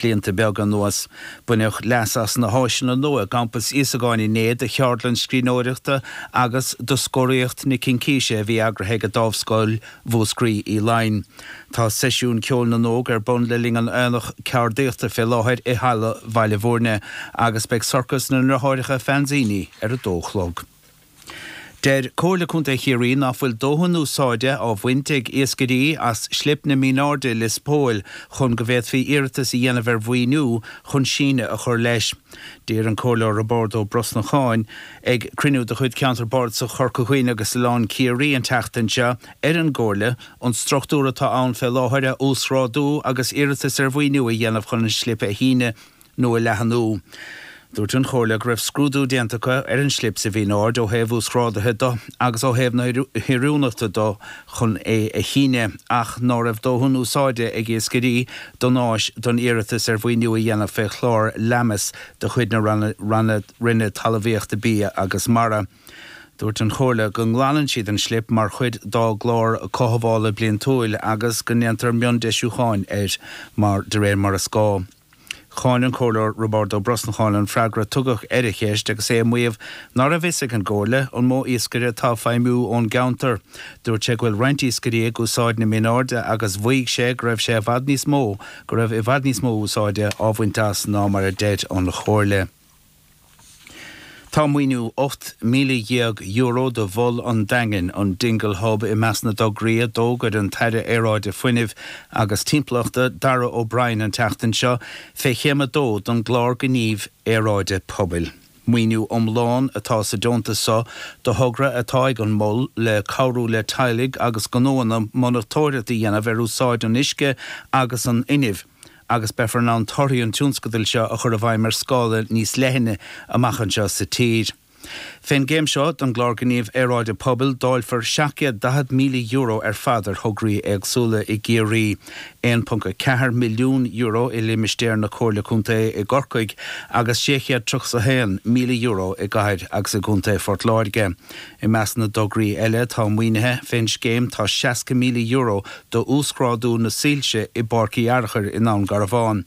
blianta beaga anuas. Baineadh leas as na háiseanna nua i gCampas Íosagáin inné do cheardlann scríbhneoireachta agus do Scóraíocht na Cincíse a bhí eagraithe ag an Dámhscoil Mhúscraí Uí Fhloinn. Tá Seisiún Ceoil na nÓg ar bun le linn an Aonaigh Ceardaíochta fé láthair i Halla Bhaile Mhúirne agus beidh Sorcas na nDreatháireacha Fanzini ar a dó a chlog. Deir Comhairle Contae Chiarraí ná fuil dóthain úsáide á bhaint ag iascairí as slip na Minairde i Lios Póil chun go bhféadfaí iarratas a dhéanamh ar mhaoiniú chun síneadh a chur leis. D'iarr an Comhairleoir Roibeárd Ó Brosnacháin, ag cruinniú de chuid Cheantar Bardasach Chorca Dhuibhne agus Oileán Ciarraí an tseachtain seo, ar an gComhairle an struchtúr atá ann fé láthair a uasghrádú agus iarratas ar mhaoiniú a dhéanamh chun an slip a shíneadh. nó a leathnú. Dúirt an Chomhairle go raibh scrúdú déanta acu ar an slip sa Mhin Aird ó thaobh uasghrádaithe de agus ó thaobh na hoiriúnachta de chun é a shíneadh ach ná raibh dóthain úsáide ag iascairí don áis don iarratas ar mhaoiniú a dhéanamh fé Chlár LAMAS de chuid na Ranna Roinne Talmhaíochta Bia agus Mara. Dúirt an Chomhairle go nglanann siad an slip mar chuid dá gclár cothabhála bliantúil agus go ndéantar miondeisiúcháin air mar de réir mar is gá. Cháin an Comhairleoir Roibeárd Ó Brosnacháin an freagra a tugadh ar a cheist agus é ag maíomh ná raibh fhios ag an gComhairle an mó iascaire atá ag feidhmiú ón gceantar. Dúirt sé go bhfuil roinnt iascairí ag úsáid na Min Airde agus mhaígh sé go raibh sé i bhfad níos mó go raibh i bhfad níos mó úsáide á bhaint as ná mar a deir an Chomhairle. Tá maoiniú €18,000 do Mhol an Daingin, an Dingle Hub, i measc na dtograí a d'fhógair an tAire Aeráide Fuinnimh agus Timpeallachta, Darragh O'Brien an tseachtain seo, fé Chéim 2 den gClár Gníomh Aeráide Pobail. Maoiniú iomlán atá sa deontas seo do thogra atá ag an Mol le cabhrú le teaghlaigh agus gnóanna monatóireacht a dhéanamh ar úsáid an uisce agus an fhuinnimh, agus beifear in ann torthaí an tionscadail seo a chur i bhfeidhm ar scála níos leithne amach anseo sa tír. Fén gcéim seo den gClár Gníomh Aeráide Pobail, dáilfear €740,000 ar fad ar thograí éagsúla i gCiarraí, €1.4 milliún i limistéar na Comhairle Contae i gCorcaigh agus €631,000 i gcathair agus i gcontae Phort Láirge. I measc na dtograí eile atá maoinithe fén scéim tá €60,000 d'uasghrádú na soilse i bPáirc Uí Fhearchair i nDún Garbhán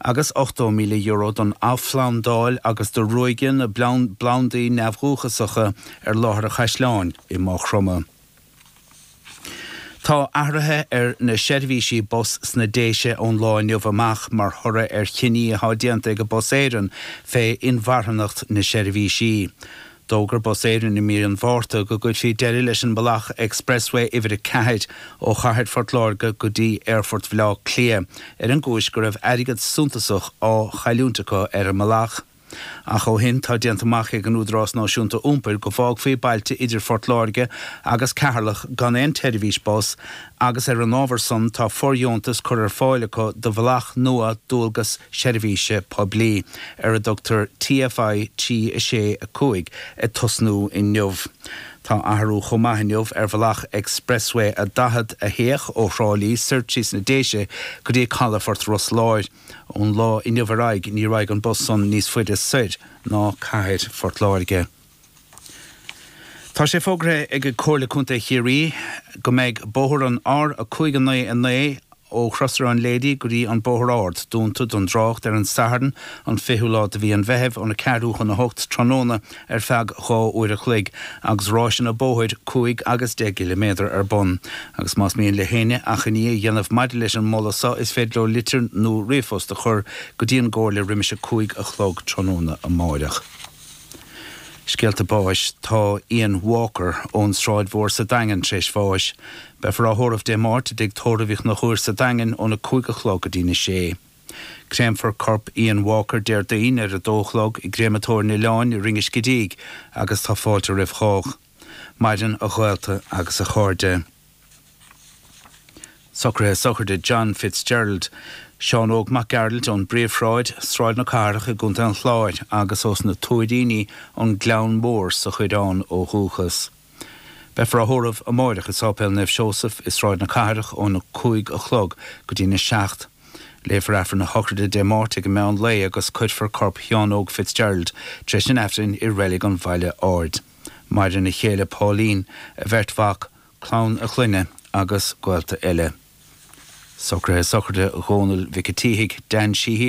agus €80,000 don athphlandáil agus do ruaigeadh na bplandaí neamhdhúchasacha ar láthair an Chaisleáin i Maigh Chromtha. Tá athruithe ar na seirbhísí bus sna Déise ón lá inniu amach mar thoradh ar chinní atá déanta ag Bus Éireann fé inmharthanacht na seirbhísí. D'fhógair Bus Éireann i mí an Mhárta go gcuirfí deireadh leis an mbealach Expressway uimhir 4 ó Chathair Phort Láirge go dtí Aerfort Bhaile Átha Cliath ar an gcúis go raibh airgead suntasach á chailliúint acu ar an mbealach. Ach ó shin tá déanta amach ag an Údarás Náisiúnta Iompair go bhfágfaí bailte idir Phort Láirge agus Ceatharlach gan aon tseirbhís bus agus ar an ábhar san tá fordheontas curtha ar fáil acu do bhealach nua dualgas seirbhíse poiblí ar a dtugtar TFI 365 ag tosnú inniu. Tá athrú chomh maith inniu ar bhealach Expressway a 40 a théadh ó Thrá Lí soir trí sna Déise go dtí calafort Ros Láir. Ón lá inniu ar aghaidh ní raghaidh an bus san níos faide soir ná cathair Phort Láirge. Tá sé fógartha ag Comhairle Contae Chiarraí go mbeidh bóthar an R599 ó Chrosaire an Léidí go dtí an Bóthar Ard dúnta don dtrácht ar an Satharn an 20ú lá de mhí an Mheithimh óna ceathrú chun a hocht tráthnóna ar feadh dhá uair a chloig agus ráiseanna bóthair cúig agus deich gciliméadar ar bun. Agus más mian le héinne achainí a dhéanamh maidir leis an moladh seo is féidir leo litir nó ríomhphost a chur go dtí an gComhairle roimis a cúig a chlog tráthnóna amáireach. Scéalta Báis Tá Ian Walker ón Sráid Mhór sa Daingean tar éis bháis. Beifear á thórramh Dé Máirt i dTigh Tórraimh Uí Chnochúir sa Daingean óna cúig a chlog go dtína sé. Créamfar corp Ian Walker Déardaoin ar a dó a chlog i gCréamatóir an Oileáin i Rinn an Scidígh agus tá fáilte roimh chách. Maireann a ghaolta agus a chairde. Socruithe sochraide John Fitzgerald, Seán Óg Mac Gearailt ón bPríomhshráid, Sráid na Cathrach i gContae an Chláir agus ós na Tuairíní, An Gleann Mór sa Choireán ó dhúchas. Beifear á thórramh amáireach i Sáipéal Naomh Seosamh i Sráid na Cathrach ón 5 a chlog go dtí'n 7. Léifear Aifreann na sochraide Dé Máirt ag an meán lae agus cuirfear corp Sheáin Óg Fitzgerald tar éis an Aifrinn i Reilig an Bhaile Áird. Maireann a chéile Pauline, a bheirt mhac, clann a chlainne agus gaolta eile. Socruithe sochraide Dhónaill Mhic a' tSíthigh, Dan Sheehy,